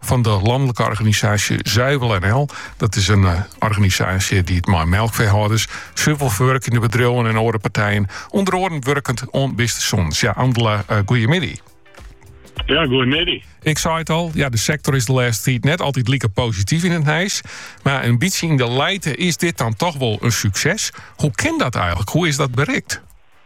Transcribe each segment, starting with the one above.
fan de lanlike organisaasje Zuivel NL. Dat is in eh, organisaasje dy't mei melkfeehâlders, suvelferwurkjende bedriuwen en oare partijen, ûnder oaren wurket oan bistesûnens. Ja, Andela, eh, goeiemiddei. Ja, goeiemiddei. Ik sei it al, ja, de sektor is de lêste tiid net altyd like posityf yn it nijs. Mar in bytsje yn de lijte is dit dan toch wol in sukses. Hoe kin dat eigenlik? Hoe is dat berikt?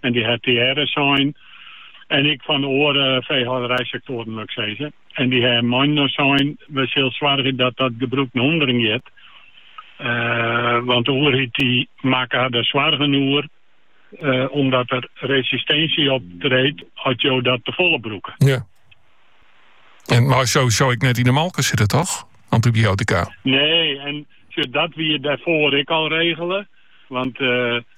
en dy ha tegearre sein en ek fan oare feehâlderijsektoaren wol ik sizze. En dy ha mei-inoar sein, we sille soargje dat dat gebrûk nei ûnderen giet, want de oerheid dy makke har der soargen oer omdat der resistinsje optreedt as jo dat tefolle brûke. Ja. En mei sowieso ek net yn de molke sitte, toch? Antibiotika. Nee, en dat wie dêrfoar ek al regele. Want eh,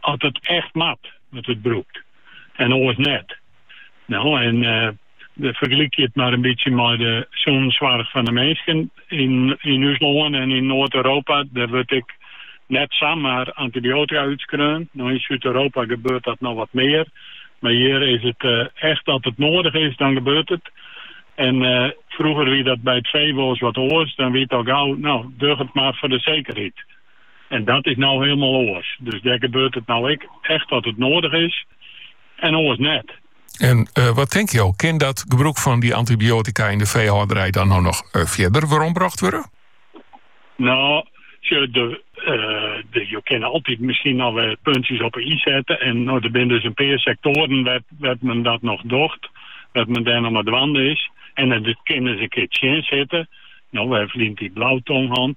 As it echt moat, wurdt it brûkt en oars net. No, en fergelykje it mar in bytsje mei de sûnenssoarch fan de minsken yn ús lân en yn Noard-Europa. Dêr wurdt ek net samar antibiotika útskreaun. No, yn Súd-Europa gebeurt dat noch wat mear, mar hjir is it echt as it noadich is, dan gebeurt it. En frûger wie dat by it fee wolris wat oars, dan wie it al gau, no, doch it mar foar de sekerheid. En dat is no hielendal oars. Dus dêr gebeurt it no ek echt as it noadich is en oars net. En wat tink jo, kin dat gebrûk fan dy antibiotika yn de feehâlderij dan no noch fierder werombrocht wurde? No, sjoch, jo kinne altyd miskien noch wer puntsjes op 'e i sette. En no, der binne dus in pear sektoaren wêr't men dat noch docht, wêr't men dêr noch mei dwaande is. En it kin ris in kear tsjinsitte. No, we ha ferline jier blautong hân.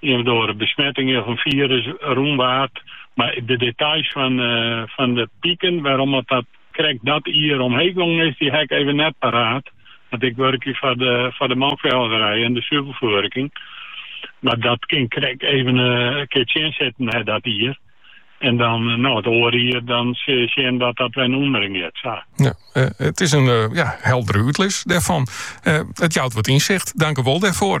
Of der oare besmetting of in firus rûnwaart. Mar de details fan de piken wêrom't dat krekt dat jier omheech gongen is, dy ha ik even net paraat. Want ik wurkje foar de melkfeehâlderij en de suvelferwerking. Mar dat kin krekt even in kear tsjinsitte hè dat jier. En dan no it oare jier dan sil je sjen dat dat wer nei ûnderen giet. Sa. Ja, it is in heldere útlis dêrfan. It jout wat ynsicht. Dank wol dêrfoar.